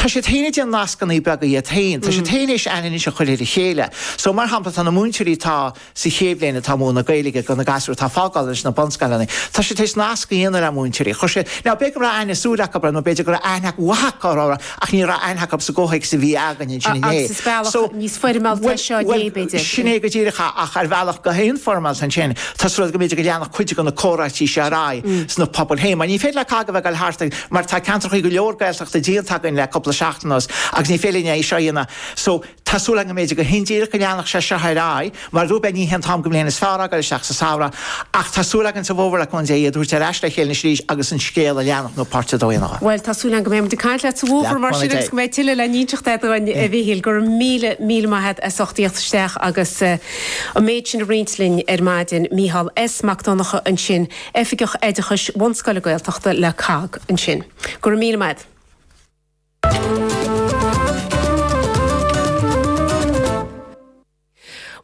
tá siad féin ag déanamh nascannaí beaga iad féin, tá siad féin éis aithne a chuir ar a chéile. So mar shampla tá na múinteoirí atá sa chéad bhliain atá ag múineadh na Gaeilge go na gasúir atá ag fágáil anois sna bunscoileanna, tá siad éis nasc a dhéanamh le múinteoirí. Cheana, now b'fhéidir go raibh aithne shúl acu orthu nó b'fhéidir go raibh aithne mhaith acu orthu ach ní raibh aithne acu sa gcomhthéacs a bhí againn ansin inné. Agus is bealach níos foirmeálta é seo inné b'fhéidir. Sin é go díreach ach ar bhealach go neamhfhoirmeálta ansin tá súil agam b'fhéidir go leanfadh cuid de na comhráití seo ar aghaidh sna pobail féin mar ní féidir le cách a bheith ag dul thart ag mar tá ceantrachaí go leor Gaeltachta díonta againn le cúpla seachtain anuas agus ní féidir linn é seo a dhéanamh so tá súil agam go mb'fhéidir go hindíreach go leanfadh sé seo ar aghaidh mar rud beag ní hé an t-am go mbliain is fearr fhágáil isteach sa samhradh ach tá súil againn sa bhfómhar le cúnamh Dé iad a thabhairt ar ais le chéile ansin arís agus an scéal a leanacht nó páirt a dó a dhéanamh Bhuel tá súil agam go mbeimid ag caint leat sa bhfómhar mar sin agus go mbeidh tuilleadh le n-inseacht agat dúinn a Mhichíl gura míle míle maith agat as ucht theacht isteach agus an méid sin a roinnt linn ar maidin Micheál S Mac Donnacha ansin i Oifigeach Oideachais Bhunscoile Gaeltachta le COGG ansin. Go raibh míle maith.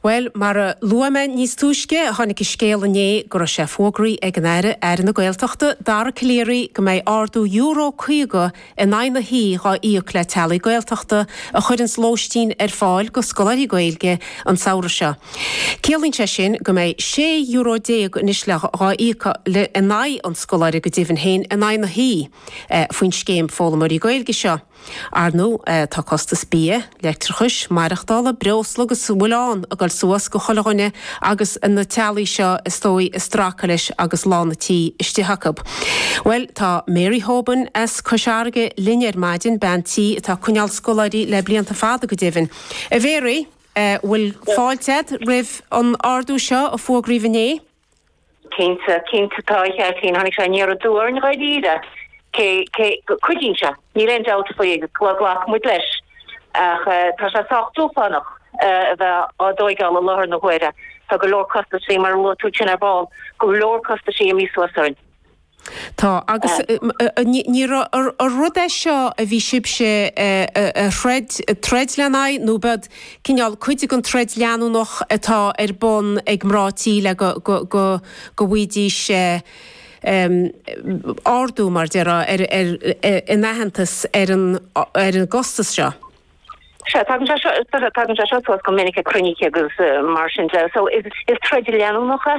Bhuel, mar a luaigh mé níos túisce, tháinig an scéal inné go raibh sé fógraithe ag an Aire, Aire na Gaeltachta, Dara Calleary, go mbeidh ardú Euro 50 in aghaidh na hoíche dhá íoc le teaghlaigh Gaeltachta a chuireanns lóistín ar fáil go scoláirí Gaeilge an samhradh seo. Ciallaíonn sé sin go mbeidh sé euro déag anois le dhá íoc in aghaidh an scoláire go deimhin féin in aghaidh na hoíche faoin scéim foghlaimeoirí Gaeilge seo. Ar ndú, tá costas bia, leictreachais, maireachtála, breosla agus a bhfuil ann ag dul suas go chuile dhuine agus na teaghlaigh seo is dóigh ag stracadh leis agus lán a' tí istigh acu. Bhuel tá Mary Hoban as Cois Fharraige linn ar maidin, bean tí atá ag coinneáil scoláirí le blianta fada go deimhin. A Mhary, bhfuil fáilte a'd roimh an ardú seo a fógraíodh inné? Cinnte, cinnte tá, a Ghearóidín. Tháinig sé aniar aduaidh orainn dháiríre, cé cé go cuidíonn sé, níl aon dabht faoi agus glacfaidh muid leis, ach tá sé sách dúshlánach a bheith á dtóigeáil i láthair na huaire. Tá go leor costaisí, mar a luaigh tú tinn ar ball, go leor costaisí imithe suas orainn. Tá, agus ní rud é seo a bhí sibhse a throid, troid lena aghaidh nó b'in cineál cuid den troid leanúnach atá ar bun ag mná tí le go bhfaighidís ardú, mar déarfá, in aitheantas ar an gcostas seo? Sea, tagann sé seo, tagann sé seo suas go minic ag cruinnithe agus mar sin de, so is troid leanúnach é.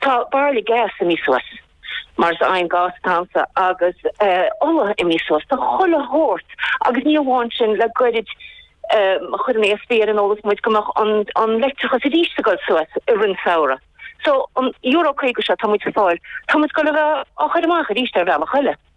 Tá bairille gas imithe suas, mar is againn gas atá anseo, agus ola imithe suas, tá chuile shórt, agus ní amháin sin, le goirid chuir an ESB ar an eolas muid go mbeadh an leictreachas arís ag dul suas i rith an samhradh. So an euro caoga seo atá muid ag fáil, tá muid ag goil a bheith á chuir amach arís ar bhealach eile.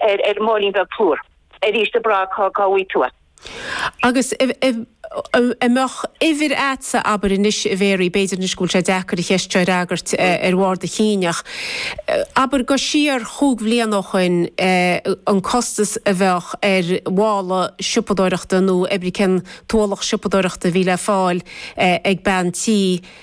ar ar mhóilín beag plúr arís a Bragg cá cá bhfui tú a. Agus a mbeadh uimhir agatsa, abair anois a Mhéaraí, b'fhéidir anois go bhfuil sé deacair an cheist seo a fhreagairt ar bharr do chinn ach abair go siar cúig bliana ó shoin an costas a bheadh ar mhála siopadóireachta nó oibrí cén t-ualach siopadóireachta a bhí le fáil ag bean tí